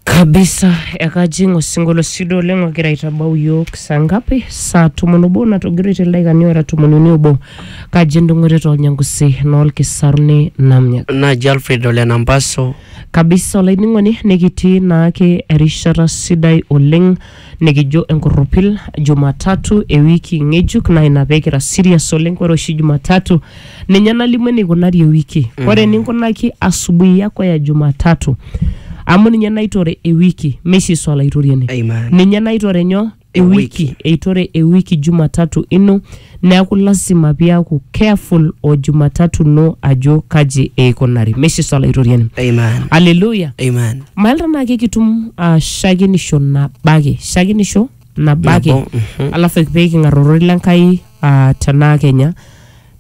kabisa ekajing osinkolio sido oleng ogira aitabau yiok saa ngapi saa tomon obo natogiroitie ildaikani ora tomon uni obo kaji endung'oto toolnyangusi noolkisaruni namnya naji alfred ole nampaso kabisa olainining'oni nikitii naake erishata sidai oleng nikijo enkurrupil Jumatatu e wiki ng'ejuk naa ina pee kira serious oleng. Ore oshi Jumatatu ninye nalimu eneikunari ewiki. Ore eninkunaki asubuhi yako ya Jumatatu amu ninye naitore ewiki, Messi Yesu Olaitoriani. Amen. Ninye naitore nyoo? Ewiki. Ewiki. Eitore ewiki Jumatatu ino. Neaku lasima piaku careful o Jumatatu ino ajo kaji eikunari. Meshiso Olaitoriani. Amen. Hallelujah. Amen. Mael tenaa kekitum uh, shakenisho nabo ake shakenisho nabo ake Nabo, mhm. alafu pee king'ar ororei le Nkai uh, tenaa kenya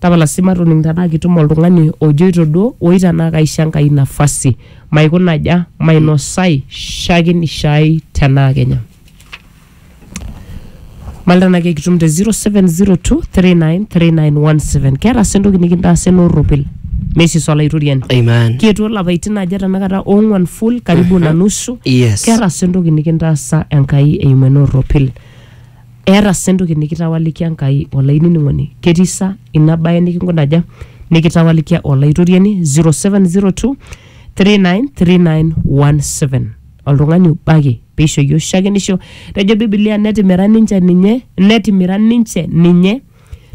tapala sii matoning tenaa kitum oltung'ani ojoito duo oi tenaa kaisho Enkai nafasi maikunaja mainosai shakenisho ai tenaa kenya mal tenaa kekitum te 0702393917 keeta sii entoki nikintaasa ena orropil mesis olaitoriani Amen. kietuo lapaitin aja tenakata ong'uan full karibu na nusu Yes. keeta sii entoki nikintaasa enkai eimu ena orropil eeta sii entoki nikitawalikia enkai olainining'oni ketii sa ina baye nikinkunaja nikitawalikia olaitoriani 0702 393917 oltung'ani obo ake peishori oshakenisho tejo bibilia netimira ninche ninye netimira ninche ninye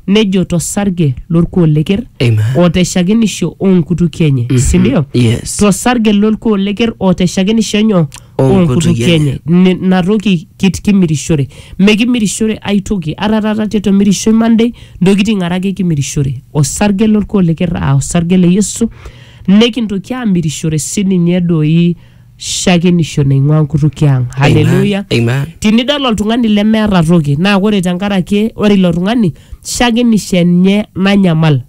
nejo tosarge lorkuo leker Amen. oteshakenisho onkutukie enye sindio Yes. tosarge lorkuo leker oteshakenisho enyo onkutukie enye Ni- natoki kit- kimirishore mekimirishore aitoki ata taata tetomirishoi monday ntokiting are ake kimirishore osarge lorkuo leker aa osarge le yesu nekintoki amirishore sininye doi shakenisho naing'ua nkutukie ang haleluya Amen. tinidol oltung'ani lemeeta toki naa ore tenkaraki ore ilo tung'ani shakenisho enye nanyamal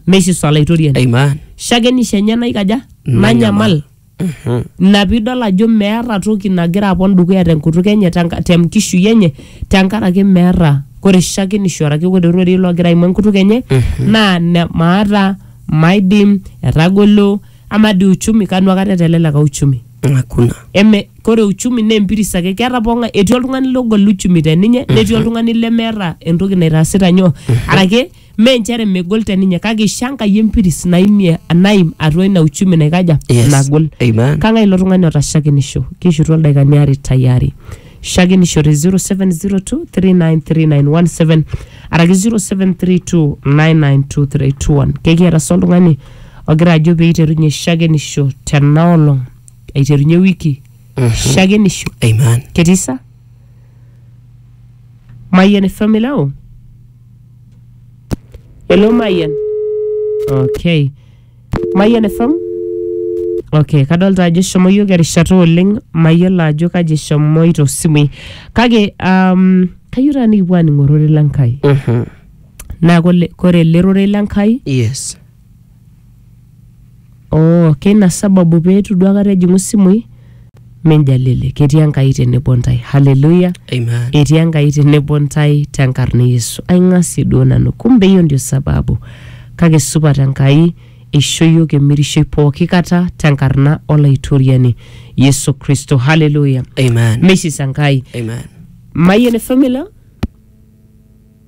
meishiso olaitoriani Amen. shakenisho enye naikaja nanyamal Mhm. ina piidol ajo meeta toki nagira apon dukuya tenkutuk enye tenka- tenkishui enye tenkaraki meeta kore shakenisho araki kore rorei logira aimu enkutuk enye naa ne- maata maidim etagolo ama di uchumi kanu akata eteleleka uchumi hakuna eme kore uchumi naa empiris ake keeta pong'ae etii oltung'ani logol uchumi te ninye netii oltung'ani lemeeta entoki naitaasita nyoo arake mee nchere megol te ninye kake isha Enkai empiris naimie naim atua ina uchumi naikaja Yes. nagol Amen. kang'ae ilo tung'ani oota shakenisho kishutua ildaikani aare tayari shakenisho te 0702393917 araki 0732992321 kekiata sa oltung'ani ogira ajo pee eiterunye shakenisho tena olong aiterunye wiki shakenisho Amen. ketii sa mayian efamilau elo mayian okay mayian efam okay kadolta ajo eshomo yiok erishata oleng mayiolo ajo kaji eshomoito simui kake um, kayieu taa nikipuo aaning'orore lenkai Mhm. naa kole- kore ele rorei le Nkai yes oo keina sababu peetu duo akata ejing'u simui minjalili ketii Enkai tenebo ntae haleluya amen etii Enkai tenebo ntae tenkarna e Yesu aing'asie duo nanu kumbe hiyo ndio sababu kake supat Enkai eisho iyiook emirishoi pooki kata tenkarna olaitoriani Yesu Kristo haleluya amen meisisa Enkai amen mayian e family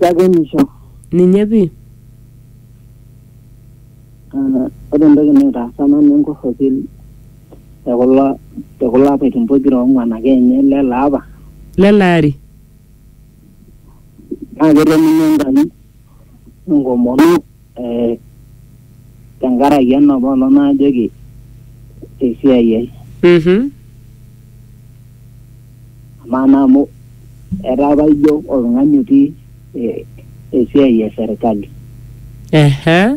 Shakenisho. Ninye pii. Ah, ore entoki naitaasa nanu enkorropil tekulo tekulo apaitin pokira ong'uan ake enye lele apa. Lele ari. Naa ketoningo Enkai enkomono. eh, tenkaraki ena poolo naajoki esiai ai Mhm. amaa naa amu etaa apa ijo oltung'ani otii eh, esiai e serkali Ehe.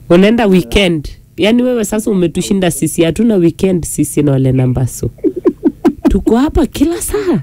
Unaenda weekend. Yaani wewe sasa umetushinda sisi, hatuna weekend sisi na wale nambasu. Tuko hapa kila saa.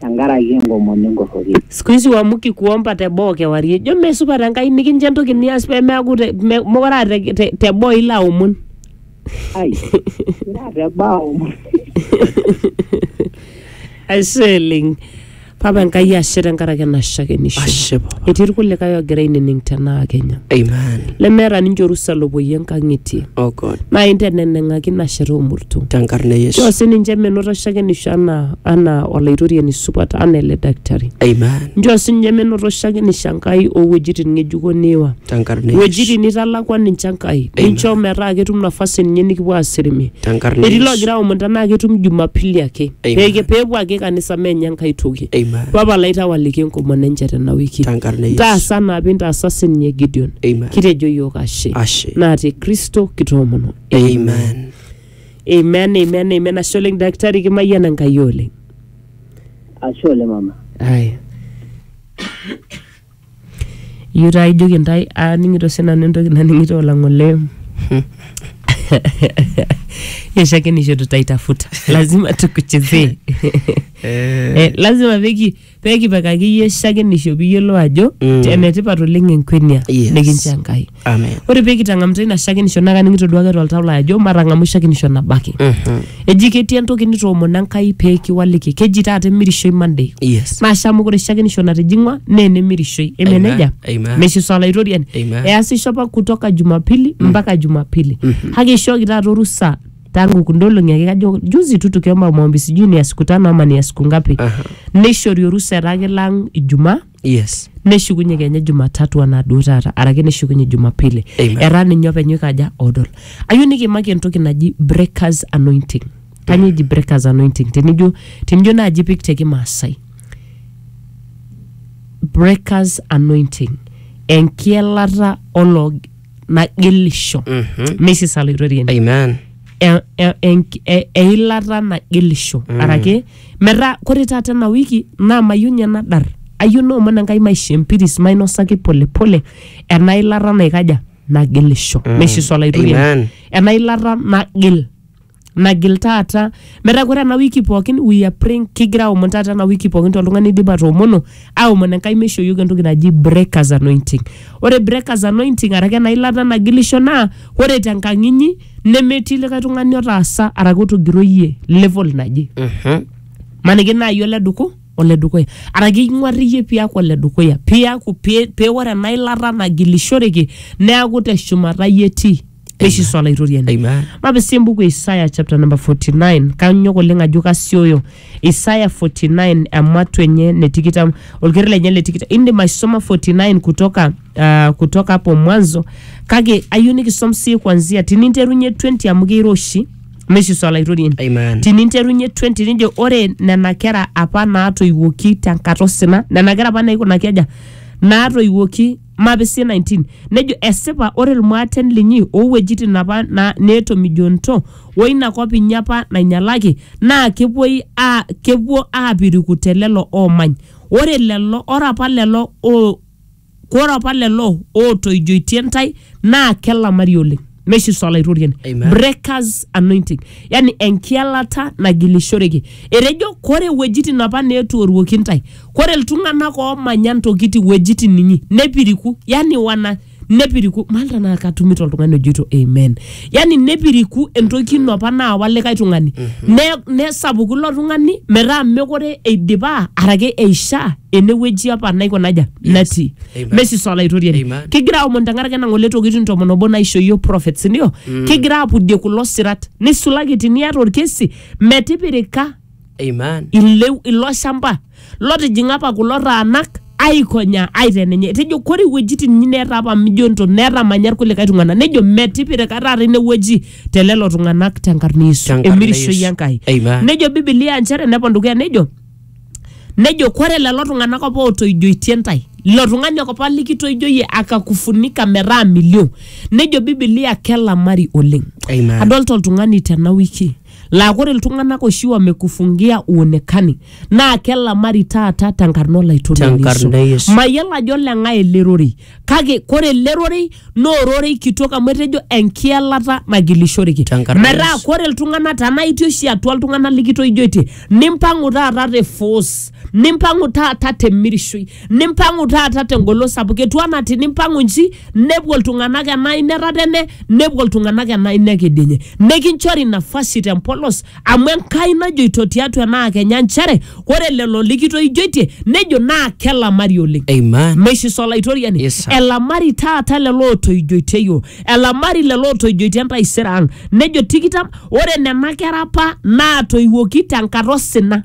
tenkaraki enkomom enkorroki. Siku hizi uamuki kuomba te boo kewarie. Ijo mee supat Enkai nikincho entoki nias pee meaku te, me, mokure aa te, te, te boo ilo aomon. Ai, ira te boo aomon. Ashe oleng. Papa Enkai ashe tenkaraki ena shakenisho. Ashe papa. Etii irkulikae oogira ainining tenaa Kenya. Amen. Lemeeta ninche orusa lopoyie nkang'itie. Oh God. Naa inteneneng'aki ina shata omurto. Tenkarna e Yesu. Nchoo sininche menoto shakenisho anaa anaa olaitoriani supat anaa ele daktari Amen. nchoo sinye menoto oshiake nisho Enkai owuejitin ng'ejuko niiwa Tenkarna Yesu. wuejitin nitalakwa ninche Enkai ninchoo metaa ketum nafasi ninye nikipuo aasirimi Tenkarna etii Yesu. loogira aomon tenaa ketum jumapili ake Amen. Pee- peepuo ake kanisa meenye Enkai toki Amen. papa lai tawaliki enkomono enche tena wiki Tenkarna Yesu. taasa anaa pintaasa sininye Gideon Amen. kitejo yiok ashe Ashe. naa te Kristo kitoomono Amen. Amen, amen, amen. Ashe oleng daktari kimayian Enkai oleng. Ashe oleng mama. Aya. Iyieu taa ijoki intae aaning'ito sinanu entoki naning'ito olang'ole. Yeshakenisho tutaitafuta. Lazima tukuchezee. Eh, lazima peki pee kipikaki iyie shakenisho pee iyiolou ajo Mm. te- enetipat oleng enkwenia Yes. nikincho Enkai. Amen. Ore pee kitang'amuta ina shakenisho naa kaning'ito duake toltau lai ajo matang'amu shakenisho nabaki. Mhm. Eji ketii entoki nitoomona Enkai pee kiwaliki. Keji taata emirishoi Monday. Yes. Maasha amu ore shakenisho natijing'wa naa enemirishoi. Eme Amen. nejia? Amen. Meshiso olaitoriani. Amen. Easisho apa kutoka Jumapili mpaka Jumapili. Kake ishooki taata orusa tangu kundolong'i ake kajo juzi tu tukiomba maombi sijui ni ya siku tano ama ni ya siku ngapi Aha. neishori orusa eraki lang ijumaa yes neshukunye kenya jumatatu anaa duo taata araki neshukunye jumapili Amen. era ninye openy oikaja odol ayieu nikimaki entoki naji breakers anointing kanyoo eji breakers anointing tenijo tenijo naaji pik te kimaasai breakers anointing enkielata olo nagelisho Mhm. mesis aloitorieni Amen. e- e- enk- e- eilata nagelisho Mm. araki metaa kore taata ena wiki naa mayieu ninye nadar ayieu naomon enkai maisho empiris mainosaki polepole ena ilata naikaja nagelisho Mm. mesis oloitorieni Amen. ena ilata nagil nagil taata metaa ore ena wiki pookin we are praying kigira aomon taata ena wiki pookin toltung'ani oidipa atoomono aomon enkai meishooyioki entoki naji breakers anointing ore breakers anointing araki ena ilata nagilisho naa ore tenkang inyi nemetii likae tung'ani otaasa araki otogiroyie level naje maniki naaji ole duku ole dukuya araki ing'uar iyie piaku ole dukuya piaku pi- pee ore ena ilata nagilishoreki neaku teshumata iyie etii neishisu olaitoriani Amen. mapisii embuku e isaya chapter number 49 kanyok oleng ajo kasioyo isaya 49 ematu enye ne tikitam olker lenye le tikitam indim aisoma 49 kutoka uh, kutoka hapo mwanzo kake ayieu nikisom sii kwanzia tininterunye 20 amu keiroshi meishisu olaitoriani Amen. tininterunye 20 nijo ore nena kera apa naatoiwuoki tenkata osina nena kera apa naikunaki aja naatoiwuoki Mapisii 19 nejo esipa ore ilmaaten linyi oo wuejitin apa na, neetomijonito o ina kop inyi apa nainyalaki naa kepuoi aa kepuo aapiriku te lelo oomany. Ore lelo ore apa lelo oo ore apa lelo ootoijoitie intae naa kelamari oleng. meishiso olaitoriani Amen. breakers anointing yani enkialata nagilishoreki etejo kore wuejitin apa neetuoruoki intae kore iltung'anak oomanya ntokitin wuejitin inyi nepiriku yani wana nepiriku maali tanaa katumito oltung'ani ojoito amen yani nepiriku entoki ino apa naawa likae tung'ani ne- nesapuku ilo tung'ani metaa mekore eidipa arake eishaa enewueji apa naiko naja natii Amen. mesisa olaitoriani Amen. kigira aomon tenkaraki ena ng'ole tokitin tomon obo naisho yiok prophets ndio kigira apudie kulo sirat nisulaki tiniata orkesi metipirika Amen. ileu ilo shamba lotijing'a apa kulo taanak aikonya aitenenye etejo kore iwuejitin inyi neeta apa mijo nto netamanya irkulikae tung'anak nejo metipirika taata inewueji te lelo tung'anak tenkarna Yesu Tenkarna emirishoi Yesu. Enkai Amen. nejo bibilia nchere nepon dukuya nejo nejo kore lelo tung'anak apa ootoijoitie ntae ilo tung'ani ake apa likitoijoyie akakufunika metaa milio nejo bibilia kelamari oleng Amen. adolta oltung'ani tena wiki laa kore iltung'anak oshi wamekufungia uonekani naa kelamari taata tenkarna olaitoriani Tenkarna Yesu. mayiolo ajo leng'ae ele rorei kake kore ele rorei naa ororei kitok amu etejo enkielata nagilishoreki Tenkaraki metaa Yesu. kore iltung'anak tenaa itii oshi atua iltung'anak likitoijoitie nimpang'u taata te force nimpang'u taata temirishoi nimpang'u taata tengolon sapuk etu anaa tinimpang'u nji nepuo iltung'anak ena aina etatene nepuo iltung'anak ena aina ekedienye nikinchori nafasi tempolos amu enkai najoito tiatua enaa kenya nchere ore lelo likitoijoitie nejo naa kelamari oleng Amen. meshiso olaitoriani Yes, sir. elamari taata lelo ootoijoitie yiok elamari lelo ootoijoitie entaisere ang nejo tikitam ore nena kera apa naatoiwuoki tenkata osina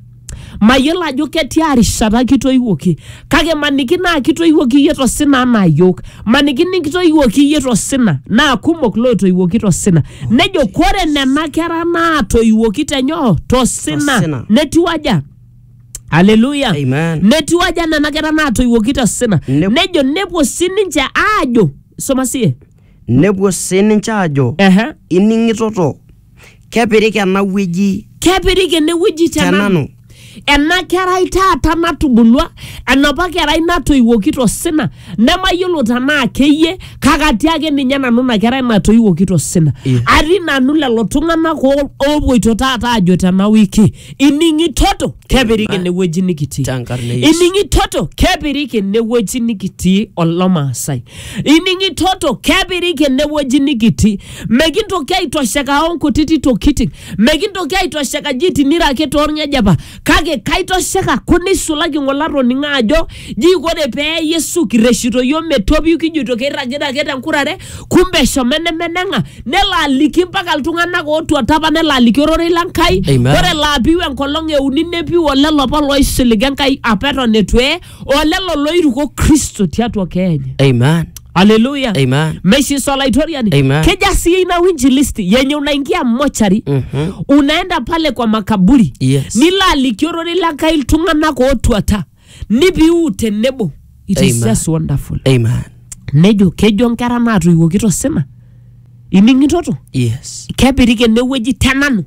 Mayiolo ajo ketia rishata kitoiwuoki kake maniki naa kitoiwuoki iyie to sina anaa iyiook, maniki nikitoiwuoki iyie to sina naa kumok lootoiwuoki to sina. Nejo kore nena kera naatoiwuoki te nyoo? To sina. Tosina. Netiu aja? Haleluya. Amen. Netiu aja nena kera naatoiwuoki to sina? Nep- Nejo nepuo sininche aajo, soma siye. Nepuo sii ninche aajo, Ehe. Ining'itoto, kepirik ena wueji kepirik enewueji te nanu tenanu. ena kerai taata natubulua enapa kerai natoiwuoki tosina nemayiolo tenaa keyie kake atii ake ninye nanu ina kerai natoiwuoki tosina Eh. atii nanu lelo tung'anak oo- oopuoito taata aajo tena wiki ining'itoto kepirik Ina- enewueji nikitii tenkarna e Yesu. ining'itoto kepirik enewueji nikitii olomaasai ining'i toto kepiriki enewueji nikitii mekintoki aitosheka onkutiti tokitin mekintoki aitosheka ji tinira ake torng'ejepa kake kaitosheka ku neisulaki ng'ole atoning'o ajo ji kore pee yesu kirreshito yiok metopiu kijoito keirragita ake tenkurare kumbe eshomo enemeneng'a nelo aliki mpaka iltung'anak ootuata apa nelo aliki ororei le Nkai Amen. ore laapiu enkolong euni nepiu olelo apa loisiliga Enkai apa eton etu eye o lelo looiruko kristo tiatua keenya Amen. aleluya Amen. meshiso olaitoriani Amen. keja sii ina winjilisti yenye unaingia mochari Mhm. unaenda pale kwa makaburi Yes. nilo aliki ororei le nkai iltung'anak ootuata nipiu tenebo it is Amen. just wonderful Amen. nejo kejo nkera naatoiwuoki tosina ining'itoto Yes. kepiriki enewueji tenanu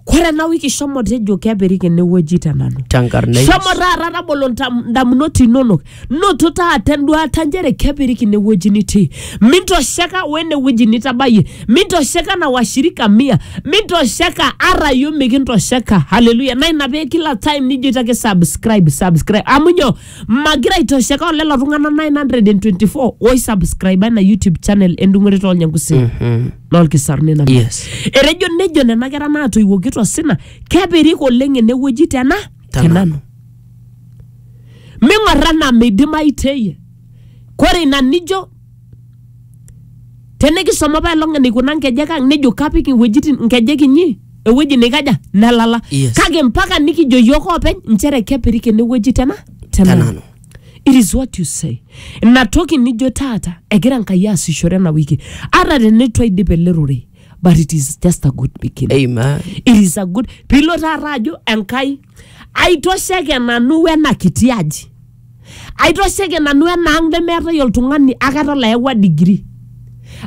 kore ena wiki shomo tejo kepirik enewueji te nanu tenkarna Yesu. shomo taata tabolo ntam- ndamunot inonok noto taata enduata nchere kepirik inewueji nitii mintosheka wenewueji nitabayie mintosheka na washirika mia mintosheka ara yo mikintosheka haleluya na ina pee kila time nijoito ake subscribe subscribe amu nyo magira aitosheka olelo tung'anak 924 oisubscribe ena youtube channel endung'ore toolnyangusi Mhm. lolkisaruni nanu Yes. etejo nejo nena kera naatoiwuoki tosina kepirik oleng enewueji tena Tenanu. tenanu ming'orra anaa meidimayu teye kore ina nijo tenikisoma apa elong eneikuna nkejek ang nejo kapik iwuejitin nkejek inyi ewueji neikaja nelala Yes. kake mpaka nikijo yiok oopeny nchere kepirik enewueji tena tenanu tenanu it is what you say ina toki nijo taata egira nkai aasishore ena wiki ata teneitu aidip ele rorei but it is just a good beginning Amen. it is a good piilo taata ajo enkai aitosheke nanu wena kiti aji aitosheke nanu ena ang nemeetae oltung'ani akata layawua digiri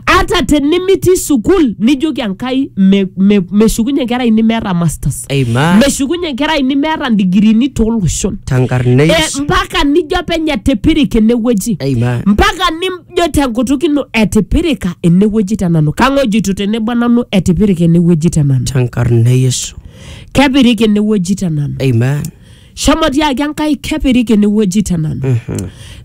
ata tenimitii sukul nijoki enkai me- me- meshukunye nkera ini meeta masters Amen. meshukunye nkera ini meeta ndigirini tooloshon Eh, Tankarna Yesu. mpaka nijo openy etipirika enewueji Amen. mpaka nijo tenkutuk ino etipirika enewueji tenanu kang'ojito tenebo nanu etipirika enewueji tenanu Tankarna Yesu. kepirika enewueji tenanu Amen. shomo tiaki enkai kepiriki enewueji te nanu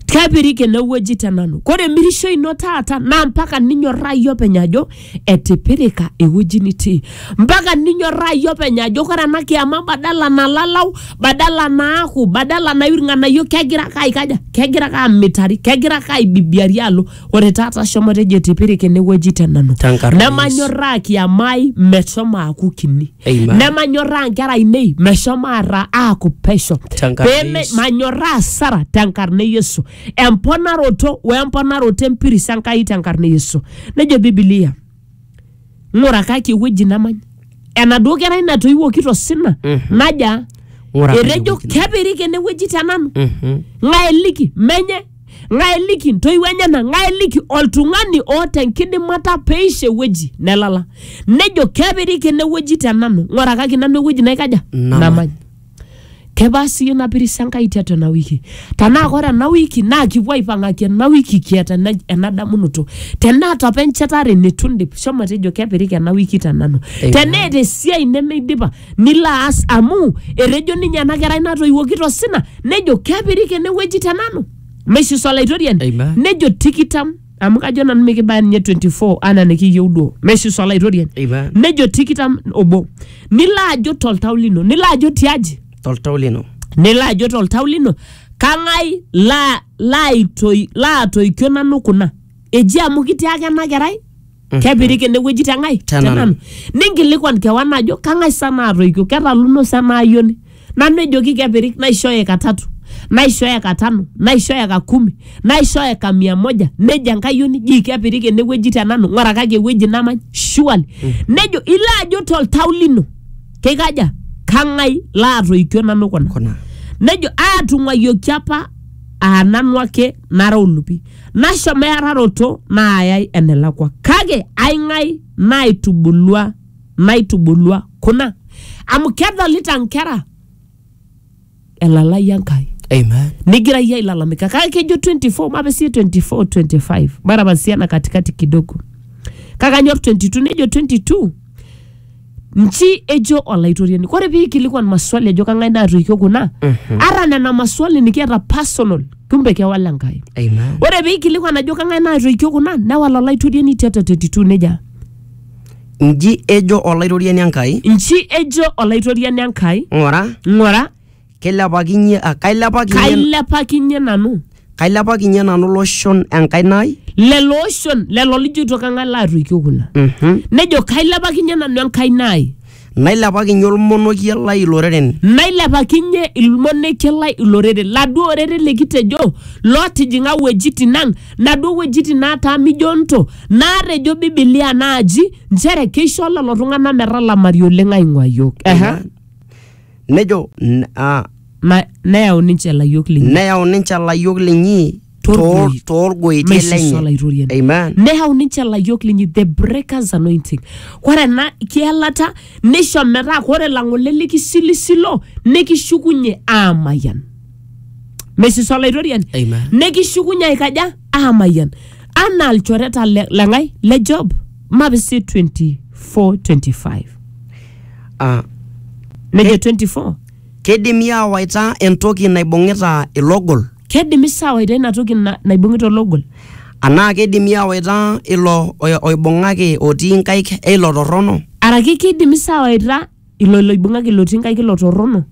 kepiriki enewueji te nanu kore emirisho ino taata naa mpaka ninyorraa iyie openy ajo etipirika ewueji nitii mpaka ninyorraa iyie openy ajo kore ena kiyama badala nalalau badala naaku badala naiu irng'anayio kegira ake aikaja kegira ake amitari kegira ake aibibiari alo ore taata shomo tejo tipirik enewueji te nanu Tenkarna nemanyorraa kiamai meshomo aaku kini Amen. nemanyorraa nkera ainei meshomo ara aaku pesho Tenkarna Peme- Yesu. manyorraa sara tenkarna e yesu emponaroto we emponaroto empiris enkai tenkarna e yesu nejo bibilia ng'urakaki ewueji namany enaduo kerai natoiwuoki tosina Mhm. naja Ng'urakaki etejo ewueji namany. kepiriki ene wueji te nanu Mhm. ng'ae eliki menye ng'ae eliki ntoiwuo enyena ng'ae eliki oltung'ani oota enkidimata peisho ewueji nelala nejo kepiriki ene wueji te nanu ng'orakaki nanu ewueji naikaja Namany. namany Kebaa siyie ina pirisha Enkai tiatua ena wiki? Tenaa kore ena wiki naa kipuo aipang'aki ena wiki kiata ena, ena damunoto. Teneata apa enchetare neitu indip, shomo tejo kepiriki ena wiki te nanu. Amen. Teneeta esiai nemeidipa nilo aas amu etejo ninye ena kerai natoiwuoki tosina nejo kepiriki ene wueji te nanu. Meishiso Olaitoriani Amen. nejo tikitam amu kajo nanu mikibaya ninye 24 anaa nikiyieu duo meshi isolaitoriani Eipa. nejo tikitam obo nilo ajo toltau lino nilo ajo tiaji toltau lino nilo ajo toltau lino kang'ai laa- laaitoi- laatoikio nanu kuna eji amu kitiaka ena kerai kepirik enewueji te ng'ae Te nanu. ninkilikwan kewan ajo kang'ae sa naatoikio ketaluno sa ena ayioni nanu ejoki kepirik naishooyo eka tatu naishooyo eka tano naishooyo eka kumi naishooyo eka mia moja nejo enkayioni jii kepirik enewueji te nanu ng'urakaki ewueji namany surely nejo ilo ajo toltau lino keikaja kang'ae laatoikio nanu kuna kuna nejo aatung'uayioki apa aa nanu ake nara olupi Nashomo eararoto naayai enelakua, kake ai ng'ae naaitubulua naitubulua kuna? Amu kedolita nkera elalai Enkai. Amen. Nigira iyie ailalamika kake kejo 24 mape sie 24 25 mara pasia na katikati kidogo kake anyor 22 nejo 22 Nji ejo Olaitoriani, ore pee eikilikuan maswali ejo kang'ae naatoikio kuna, ata nena maswali nikiata personal, kumbe kewal Enkai. Amen. Ore pee eikilikuan ajo kang'ae naatoikio kuna, newal Olaitoriani tiatua 32 neja. Nji ejo Olaitoriani Enkai, Nji ejo Olaitoriani Enkai, ng'ura, ng'ura, Keilepakinye, ah, kailepakinye, kailepakinye nanu kailepakinye nanu loshon enkaina ai. lelo oshon lelo lijoito kang'ae laatoikio kuna Mhm. nejo kailepakinye nanu enkaina ai Nailepakinye olmonokie lai iloreren. nailepakinye ilmonekie lai iloreren laduo oreren likitejo lootijing'a wuejitin ang naduo wuejitin naataa mijonto naatejo bibilia naaji nchere keisho lelo tung'anak metalamari oleng aing'ua yiok Ehe. nejo n- ah, Ma, neyau ninche ilayiok linyi neyau ninche ilayiok linyi Torgoi- too- toorgoitie maishosho lenye olaitoriani amen neyau ninche ilayiok linyi the breakers anointing ore ena kielata neisho metaa ore lang'ole likisilisilo nikishukunye aamayian meishisho olaitoriani Amen. nikishukunye aikaja aamayian anaa ilchoreta le- leng'ae le job mapi si 24 25 Ah, nejo 24 keidimi aawaita entoki naibung'ita ilogol kedimi sawaita ina toki na- naibung'ita ologol anaa keidimi aawaita ilo oi- oibung'aki otii nkaik eilo torrono araki kidimi sawaita ilo loibung'aki ilo tinkai kilo torrono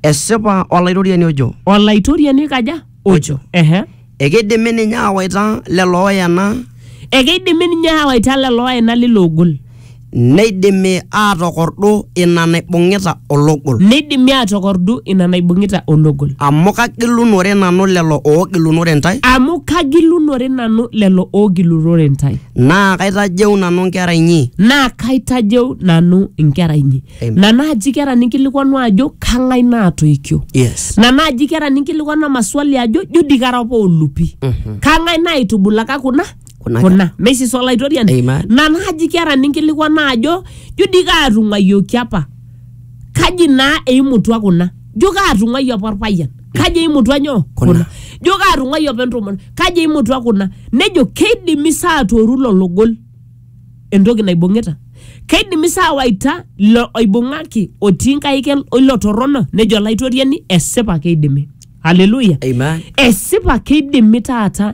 Esipa Olaitoriani ojo, olaitoriani kaja Ojo. ehe ekeidimi ninye aawaita lelo ooyena, ekeidimi ninye aawaita lelo oena lilo ogol neidimi aatokordu ina naibung'ita ologol. neidimi aatokordu ina naibung'ita ologol Amu kagilunore nanu lelo oogilunore intae, amu kagilunore nanu lelo oogilurore intae naa kaitajeu nanu nkera inyi naa kaitajeu nanu inkera inyi Amen. na naaji kera ninkilikuanu ajo kang'ae naatoikio yes na naaji kera ninkilikuanu maswali ajo jo dii kara apa olupi kang'ae naitubulaka kuna Kuna kuna mesis olaitoriani Amen. na naaji kera ninkilikuanu ajo jo dii kaatung'ayioki apa kaji naa eimutua kuna jo kaatung'uai apa orpayian kaji eimutua nyoo Kuna. kuna jo kaatung'uai apa entomononi kaji eimutua kuna nejo keidimi saa atooru lolo gol entoki naibung'ita keidimi saa waita ilo oibung'aki otii nkaik el- oilo torrono nejo olaitoriani esipa keidimi haleluya Amen. esipa keidimi taata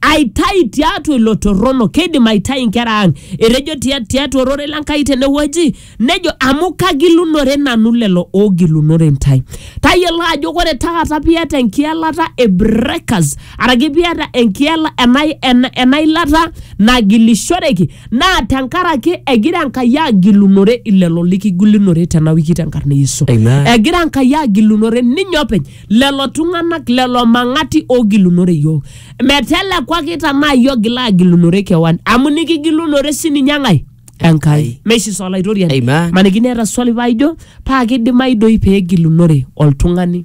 aitai tiatua ilo torrono keidim aitai inkera ang etejo tia- tiatua ororei le Nkai tenewueji nejo amu kagilunore nanu lelo oogilunore intae tayiolo ajo kore taata piata enkielata e breakers araki piata enkiela ena, ena, ena ilata nagilishoreki naa tenkaraki egira Enkai agilunore ilelo likigilunore tena wiki tenkarna e Yesu Amen. egira Enkai agilunore ninye openy lelo tung'anak lelo mang'ati oogilunore iyiook metelekwaki tanaa iyie ogila agilunore kewan amu nikigilunore sininye ng'ae enkai meshi sa olaitoriani Amen. maniki neeta swali paaijo paa kidimayu doi peegilunore oltung'ani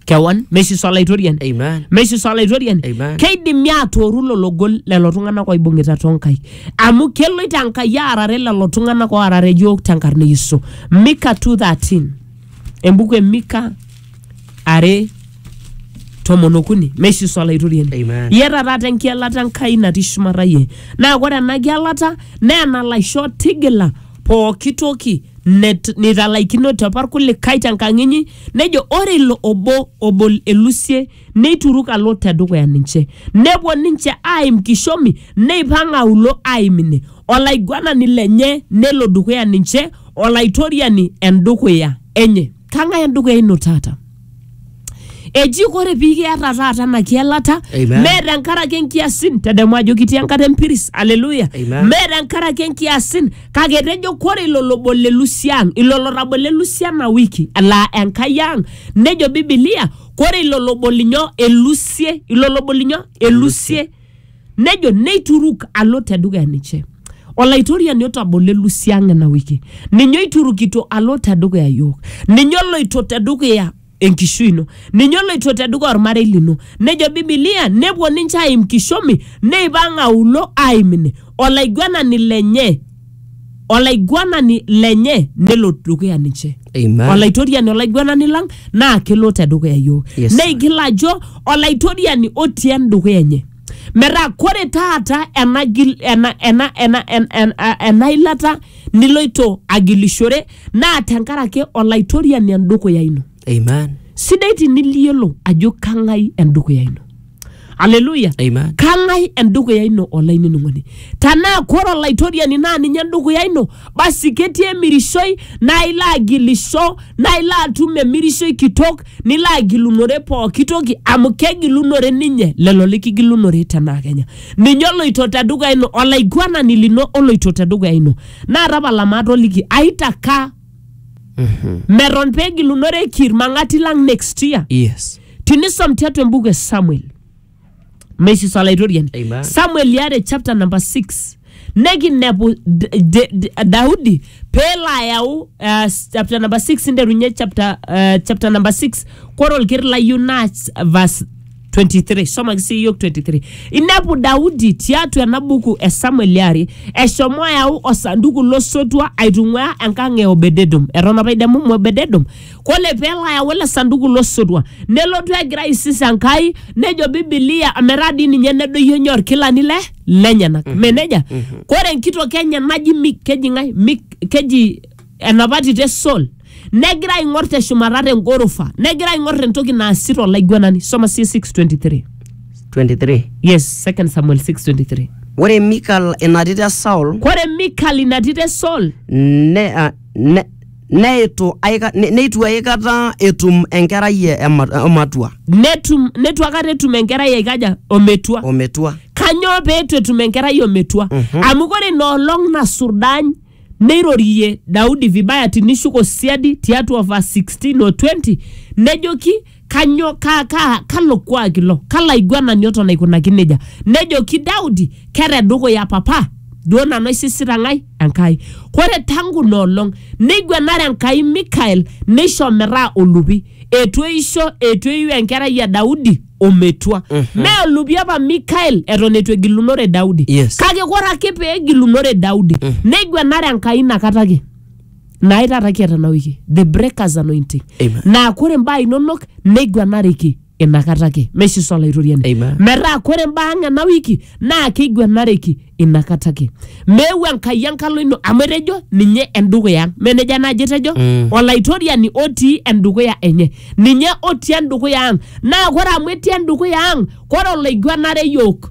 kewan meshi sa olaitoriani Amen. meshi sa olaitoriani Amen. keidimi atooru lelo gol lelo tung'anak oibung'ita tonkai amu keloito enkai aarare lelo tung'anak oarare iyiook tenkarna e yesu mika 213 embuku e mika are tomon okuni meishiso olaitoriani Amen. iyata taata enkielata enkai natii shumata iyie naa ore ena kielata naa enalaisho tigila pooki toki net- nitalaikinote apa irkulikae tenkang inyi nejo ore ilo obo obol elusie neituruk alo te dukuya ninche. Nepuo ninche aaim kishomi, neipang aulo aimine. Olaiguanani lenye nelo dukuya ninche, Olaitoriani endukuya enye. Kang'ae endukuya ino taata? Eji ore pii kiata taata ena kielata, Amen. mee tenkaraki enkiasin, tadamu ajo kitii enkata empiris, haleluya. Amen. Mee tenkaraki enkiasin, kake etejo kore ilo lobol elusi ang, ilo lotabolo elusi ena wiki, laa Enkai ang, nejo Bibilia kore ilo lobo linyo elusie ilo lobo linyo elusie nejo neituruk alo tedukuya ninche olaitoriani otabolo elusie ang ena wiki ninye oiturukito alo tedukuya yiok ninye oloito tedukuya enkishui ino ninye oloito tedukuya ormarei lino nejo bibilia nepuo ninche aim kishomi neipang aulo aim ine olaiguanani lenye olaiguanani lenye nelo dukuya ninche Amen. olaitoriani olaiguanani lang naa kelo te dukuya yiok Yes, sir. neigil ajo olaitoriani otii endukuya enye metaa kore taata ena, gil- ena, ena, ena, en- en- a- ena ilata niloito agilishore naa tenkaraki olaitoriani endukuya ino Amen. sidai tiniliyiolo ajo kang'ai endukuya ino aleluya Amen. kang'ae endukuya ino olainining'oni tanaa kore olaitoriani naa ninye endukuya ino basi ketii emirishoi naa ilo agilisho naa ilo atum emirishoi kitok nilo agilunore pooki toki amu kegilunore ninye lelo likigilunore tenaa kenya ninye oloito tedukuya ino olaiguanani lino oloito tedukuya ino naa tapala maatoliki aitakaa meton pegilunoreki irmang'ati lang next year Yes. tinisom tiatua embuku e samuel mesis olaitoriani Amen. samuel liare chapter number 6 nekinepu D- D- D- daudi peelo ayau uh, chapter number 6 nterunye chapter, uh, chapter number 6 kore olker layieu naa ch- verse 23 somaki sii yiok 23 inepu daudi tiatua ena buku e samuel liare eshomo ayau osanduku losotua aitung'uaa enkang e obededom eton apa idemu mu obededom kole pelo ayau ele sanduku losotua nelotu egira aisis enkai nejo bibilia metaa dii ninye nedoyio nye orkilani le lenyenak mme nejia kore enkitok enye naji mik keji ng'ae mik keji enapa tito e sol negira aing'or teshumata tengorofa negira aing'or entoki naasita olaiguanani soma sie 623 23 yes second samuel 623 ore mikal ina tito e saul kore mikal ina tito e sol ne, ah, ne, neitu aika- ne- neitu aikata etum enkerai e- ema- ematua netum netu akata etum enkerai aikaja ometua ometua kanyoo peetu etum enkerai ometua amu kore ina olong nasurdany neirorie daudi vibaya tinishuk osiadi tiatua va 16 o 20 nejoki kanyo ka, ka, kalo kuak ilo kalo aiguanani oton aikunaki nejia nejoki daudi kere dukuya papa duo nanu aisisita ng'ae enkai kore tangu ina olong neiguanare enkai mikael neisho metaa olupi etu eisho etu eiu enkerai e daudi ometua mm-hmm. mee olupi apa mikael eton etu egilunore daudi Yes. kake kore ake pee egilunore daudi mm-hmm. neiguanare enkai inakata ake naai taata kiata ena wiki the breakers anointing Amen. naa kore imbaa inonok neiguanareki inakata ake meshiso olaitoriani Amen. metaa kore imbaa ang ena wiki naa keiguanareki inakata ake meeu enkai enkalo ino amu etejo ninye endukuya ang menejo enaaji etejo Mm. olaitoriani otii endukuya enye ninye otii endukuya ang naa kore amu etii endukuya ang kore oloiguanare yook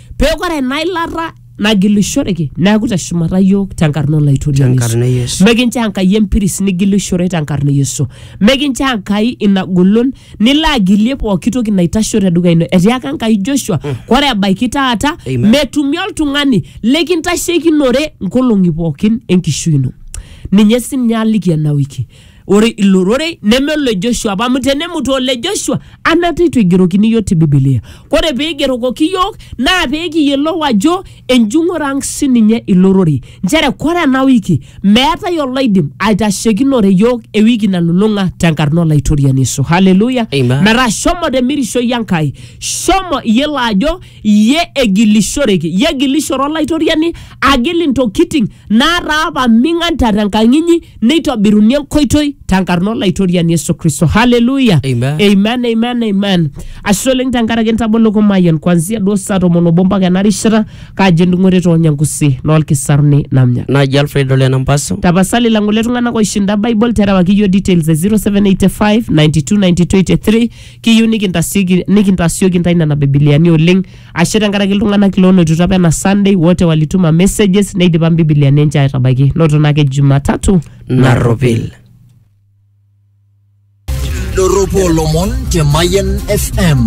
Peeku ore ena ilata nagilishoreki neaku te shumata iyiook tenkarna olaitoriani Yesu. Tenkarna e Yesu. Mikincho Enkai empiris nigilishore tenkarna e Yesu. Mikincho Enkai ina golon nilo agilie pooki toki naitasho tedukuya ino. Etiaka Enkai Joshua, ore ebaiki taata Amen. metumi oltung'ani likintasheikinore nkolong'i pookin enkishui ino. Ninye sininye aliki ena wiki. Ore ilo rorei neme ole Joshua apa amu tenemutu ole Joshua anata eitu eigerokini iyiook te Bibilia. Ore pee eigerokoki iyiook naa pee kiyiolou ajo enjung'ore ang sininye ilo rorei. Nchere ore ena wiki meetae oloidim aitashekinore iyiook ewiki nalulung'a tenkarna Olaitoriani Yesu. Hallelujah. Amen. Metaa shomo te mirishoi Enkai, shomo iyiolo ajo iyie egilishoreki, iyie egilishore Olaitoriani agil intokiting naataa paming'an te tenkang inyi neitobiruni enkoitoi tenkarna olaitoriani yesu kristo haleluya Amen. amen amen amen ashe oleng tenkaraki entabolo kumayian kwanzia duo saa tomon obo mpaka ena rishata kaaji endung'ore toonyangusi noolkisaruni namnya naji alfred ole nampaso tapasali lang'ole tung'anak oishinda bible terewaki yiok details e 0785 929283 kiyieu nikintasieki- nikintasioki ntae nena bibiliani oleng ashe tenkaraki iltung'anak loonotito apa ena sunday wote walituma messages neidipa mbibilia ninche aitabaiki noto naake jumatatu narropil Doropo Lomon te Mayan FM.